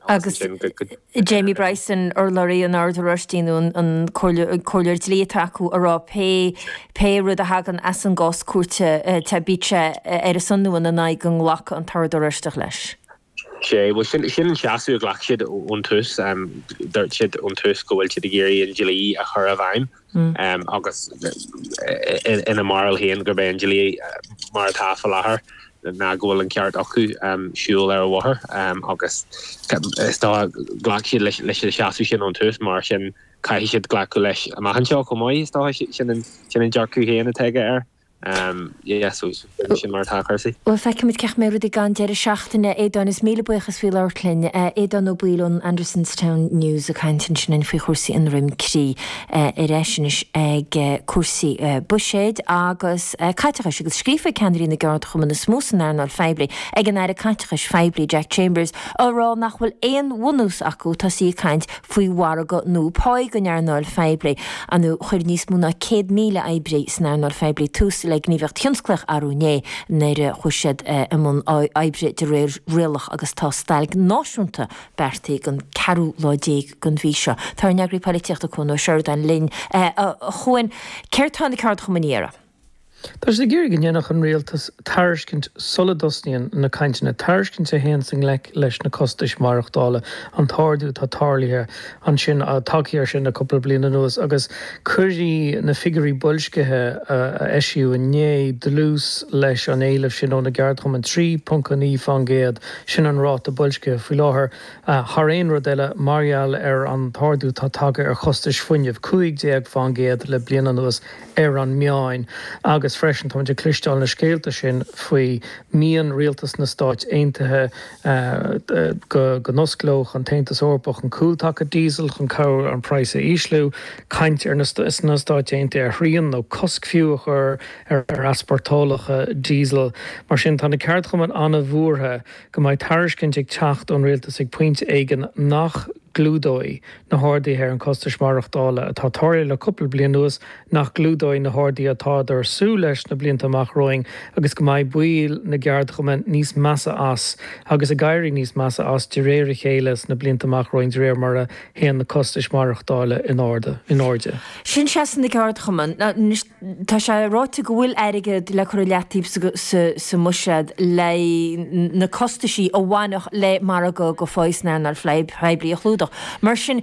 Agus Jamie Bryson, urlabhraí an Oird Oráistigh, nó an comhairleoir dlí atá acu, a rá pé rud a thagann as an gcás cúirte bíodh sé ar a son nó ina n-aghaidh go nglacfadh an tOrd Oráisteach leis. Sea, bhuel sin an seasamh a ghlac siad ón tús. Dúirt siad ón tús go bhfuil siad ag iarraidh an dlí a chur i bhfeidhm. agus ina mbarúil féin gurb é an dlí mar atá faoi láthair ná go bhfuil an ceart acu siúl ar an bhóthar agus is dócha ghlac siad leis an seasamh sin ón tús mar sin caithfidh siad glacadh leis amach anseo chomh maith, is dócha. Sin an dearcadh féin atá aige air. Bhuel, feicfimid cén chaoi a mbeidh rudaí ag an deireadh seachtaine, a Aodáin, is míle buíochas as labhairt linn. Aodán Ó Baoill ón Andersonstown News ag caint ansin linn faoi chúrsaí Dhroim Crí. Ar ais anois ag cúrsaí buiséid agus caiteachais, agus scríofa ag ceannairí na gceardchumann is mó san earnáil phoiblí, ag an Aire Caiteachais Phoiblí, Jack Chambers, á rá nach bhfuil aon bhunús acu tosaí ag caint faoi mhargadh nua pá don earnáil phoiblí. Chuir níos mó ná 100,000 oibrí san earnáil phoiblí tús le gníomhaíocht thionsclaíoch arú inné nuair a chuaigh siad i mbun oibre de réir rialach agus tá stailc náisiúnta beartaí don 14ú lá den mhí seo. Tá ár n-eagraí polaitíochta Cuan Ó Seireadáin linn. A Chuain, Céard tá na ceardchumainn a iarraidh? Tá siad ag iarraidh go ndéanfadh an Rialtas tairiscint sula dtosnaíonn na cainteanna, tairiscint a théanns i ngleic leis na costais mhaireachtála, an t-ardú atá tarlaithe ansin, tagthaí ansin le cúpla bliain anuas agus cuirfidh na figiúirí boilscithe a eisíodh inné dlús leis an éileamh sin ó na gceardchumainn. 3.9 fán gcéad, sin an ráta boilscithe faoi láthair, thar aon rud eile mar gheall ar an t-ardú atá tagtha ar chostais fuinnimh, 15 fán gcéad le bliain anuas ar an meáin agus freisin táimid ag cloisteáil na scéalta sin faoi mian rialtas na Stáit Aontaithe go n-osclódh an tAontas Eorpach an cúltaca díosail chun cabhrú an praghas a ísliú, caint ar na Stáit Aontaithe ar shrian nó cosc fiú a chur ar easpórtálacha díosail. Mar sin tá na ceardchumainn an-bhuartha go mbeidh tairiscint ag teacht ón rialtas ag pointe éigin nach gclúdóidh na harduithe ar na costais mhaireachtála atá tarlaithe le cúpla bliain anuas, nach gclúdóidh na harduithe atáthar súil leis sna blianta amach romhainn agus go mbeidh baill na gceardchumann níos measa as agus ag éirí níos measa as de réir a chéile sna blianta amach romhainn de réir mar a théann na costais mhaireachtála in airde. Sin seasamh na gceardchumann. Tá sé ráite go bhfuil airgead le cur i leataobh sa mbuiséad le na costaisí a bhainfeadh le margadh pá san earnáil phoiblí a chlúdach. Mar sin,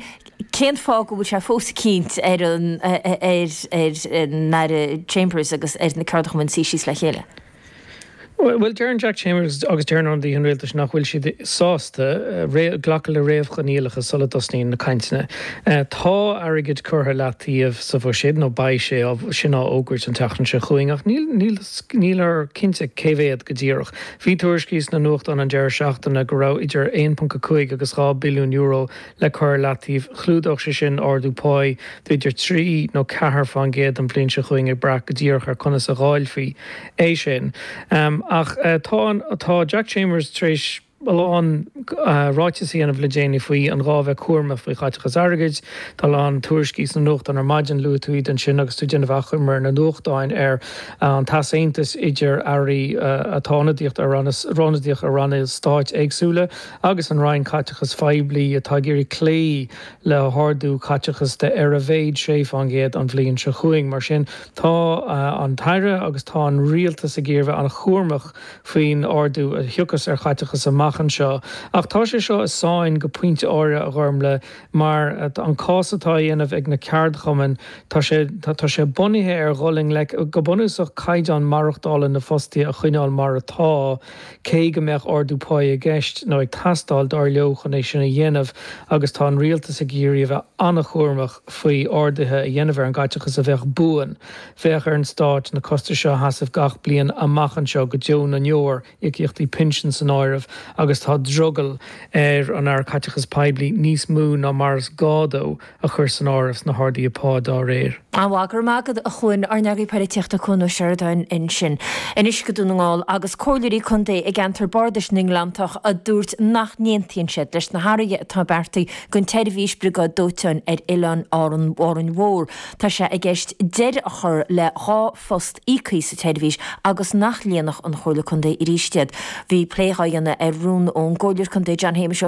cén fáth go bhfuil sé fós ag cinnt ar an Aire Chambers agus ar na ceardchumainn suí síos le chéile? Bhuel, deireann Jack Chambers agus deireann ionadaithe an rialtais nach bhfuil siad sásta glacadh le réamhchoinníollacha sula dtosnaíonn na cainteanna. Tá airgead curtha i leataobh sa bhuiséad, nó beidh sé sin á fhógairt an tseachtain seo chugainn, ach níltear cinnte cé mhéad go díreach. Bhí tuairiscí sna nuachtáin an deireadh seachtaine go raibh idir €1.5 agus €2 billiún le cur i leataobh, chlúdódh sé sin ardú páí de idir trí nó ceathair fán gcéad an bhliain seo chugainn, ag brath go díreach ar conas a dháilfí é sin. Ach tá an, tá Jack Chambers tar éis a lán ráiteas a dhéanamh le déanaí faoi an ghá bheith cúramach faoi chaiteachas airgid. Tá a lán tuairiscí sna nuachtáin ar maidin, luaigh tú iad ansin agus tú ag déanamh achoimre ar na nuachtáin ar an easaontas idir Airí atá ionadaíocht ar ranna, ionadaíoch ar ranna stáit éagsúla. agus an Roinn Caiteachas Phoiblí atá ag iarraidh cloí le hardú caiteachas de ar a mhéad 6 fán gcéad an bhliain seo chugainn. Mar sin tá an tAire agus tá an Rialtas ag iarraidh bheith an-chúramach faoin ardú a thiocfas ar chaiteachas amach anseo. Ach tá sé seo i sáinn go pointe áirithe, a Ghormlaith, mar an cás atá á dhéanamh ag na ceardchumainn tá sé tá sé bunaithe ar dhul i ngleic go bunúsach caighdeán maireachtála na fostaithe a choinneáil mar atá. Cé go mbeadh ardú pá i gceist, nó ag teastáil, dár leo chun é sin a dhéanamh, agus tá an Rialtas ag iarraidh a bheith an-chúramach faoi arduithe a dhéanamh ar an gcaiteachas a bheadh buan, bheadh ar an Stát na costais seo a sheasamh gach bliain amach anseo go deo na ndeor, íocaíochtaí pinsin san áireamh, agus tá drogall ar an Aire Caiteachais Poiblí níos mó ná mar is gá dó. a chur san áireamh sna harduithe pá dá réir. An-mhaith, go raibh maith agat a Chuain, ár n-eagarthóir poilitíochta Cuan Ó Seireadáin ansin Anois go Dún na nGall agus comhairleoirí contae i gceantar Bhardais na nGleanntach a dúirt nach n-aontaíonn siad leis na hathruithe atá beartaithe don tseirbhís briogáid dóiteáin ar Oileán Árainn Mhór. Tá sé i gceist deireadh a chur le dhá phost íoctha sa tseirbhís agus nach líonfadh an Chomhairle Contae arís iad. Bhí plé á dhéanamh ar rún ón gComhairleoir Contae John Shéamuis Ó